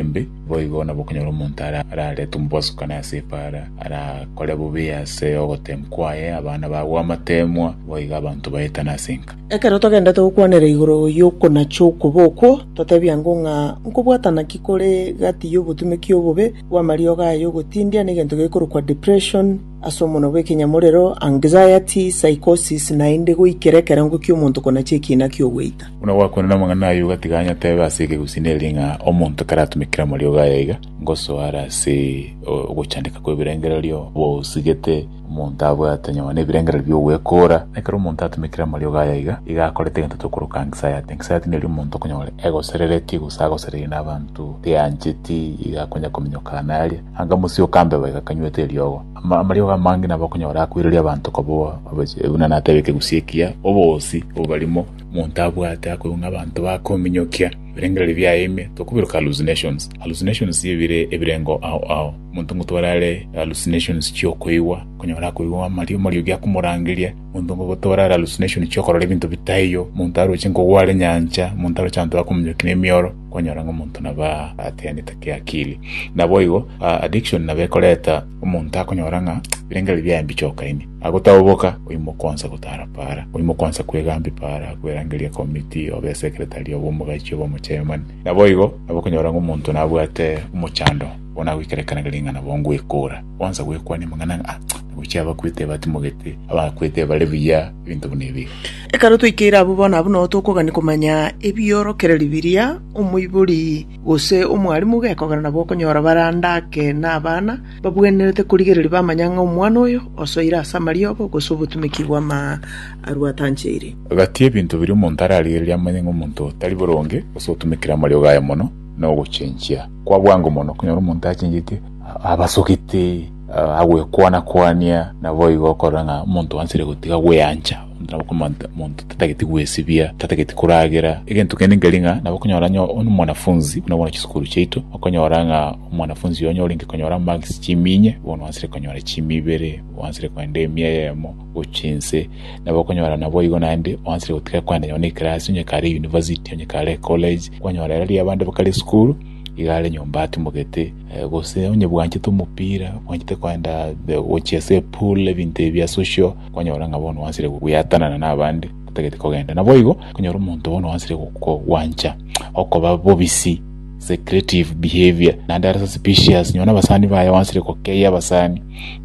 embe, boigo nabo okonyora omonto araretwe omobosokani ase epaara, arakore bobe ase ogoteemwa kwaye, abana bagwe amateemwa, boigo abanto baetane ase enka. Ekero togendete gokwanera igoro y'okonacha okobe okwo, toteebia ng'o ng'a nkobwatana ki kore gati y'obotumeki obobe bw'amariogo aya y'ogotindia na egento gekorokwa depression, Ase omonwa bw'ekenyamorero, anxiety, psychosis, naende goikera ekerengo ki'omonto konachia ekiina ki'ogweita. Buna gwakwenire amang'ana ayio iga tiga nyatebe ase ekegusini eri ng'a omonto ekero atumekire amariogo aya iga, ngosoa are ase ogochandeka kw'ebirengererio bosigete omonto abwate nyuma nebirengererio bi'ogwekora. Ekero omonto atumekire amariogo aya iga, iga akorete egento tokoroka anxiety. Anxiety neri omonto okonyora egosereretie gose agosereire nabanto, teancheti iga akonya kominyoka naye aria. Akamosioka mbeba igakanywete eriogo. Ama- Amariogo amange nabo okonyora akoireria abanto koba abache- buna natebete gusii ekiya, oboosi obarimo omonto abwate akoigwa ng'a abanto bakominyokia ebirengererio biaye ime, tokobiroka hallucinations. Hallucinations ebire ebirengo ao ao. Omonto ngotware are hallucinations chiokoigwa, okonyora akoigwa amario amariogi akomorangeria, omonto ngogotware are hallucination chiokorora ebinto bitaiyo, omonto aroche nkogwa are nyancha, omonto aroche abanto bakominyokia nemioro, kwanyora ng'a omonto nabo atenete kiakili. Naboigo addiction nabo ekoreta omonto akonyora ng'a birengeri biaye mbiche okaini, agotaboboka oimoka onsa gotara para, oimoka onsa kwegambia para, kwerangeria komiti, obe esekretari, obe omogachi, obe omochairmani. Naboigo nabo okonyora ng'a omonto nabwate omochando bono agoikera ekanegere ng'a nabo ngoekora. Gwansa gwekwania amang'ana ng'a, "Ah, naboiche abakwete batimogete, abakwete bare buya, ebinto buna ebi. Ekero twaikeire abwo bono, abwo nao tokogania komanya ebiorokererio biria omoibori gose omwarimu gekogera nabo okonyora bare ande ake nabana babwenerete korigereria bamanya ng'a omwana oyo osoire ase amariogo gose obotumeki bw'amaarwa atancheire. Gati ebinto biria omonto ararigererie amanye ng'a omonto tari boronge gose otumekire amariogo aye mono nogochenchia kwa bwango mono okonyora omonto achenchete. abasogete agwekwana-kwania, naboigo okorora ng'a omonto ansire gotiga gweancha, nabo okomanta omonto tatageti gwesibia, tatageti koragera, egento kende nkeri ng'a nabo okonyora onye omwanafunzi buna bono chisukuru chiaito, okonyora ng'a omwanafunzi onye orenge konyora marks chiminye, bono ansire konyora chiimi ibere, ansire kogenda emia eyemo gochia inse, nabo okonyora naboigo naende ansire gotiga kogenda nonye na ekerasi onye kare university, onye kare ecollege, kwanyora ere riabande bakare esukuru, iga are nyomba atumogete. gose onye bwanchete omopira, bwanchete koenda gochia ase epool, ebinto ebi bia social, kwanyora ng'a bono bwanchire goeatanana na abande, otagete kogenda. Naboigo, okonyora omonto bono bwanchire gokogwancha okoba bobisi, secretive behaviour, naende are suspicious, nonya na abasani baye bwanchire kokeia abasani,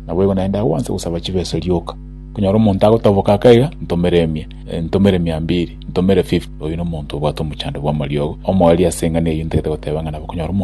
naboigo naende akobwansa gosaba chibesa rioka. Okonyora omonto agotoboka ake iga, ntomere emia, ntomere mia mbiri, ntomere fifty, oyio na omonto obwate omochando bw'amariogo. Omoerio ase eng'ana eyio ntagete goteba ng'a nabo okonyora omonto.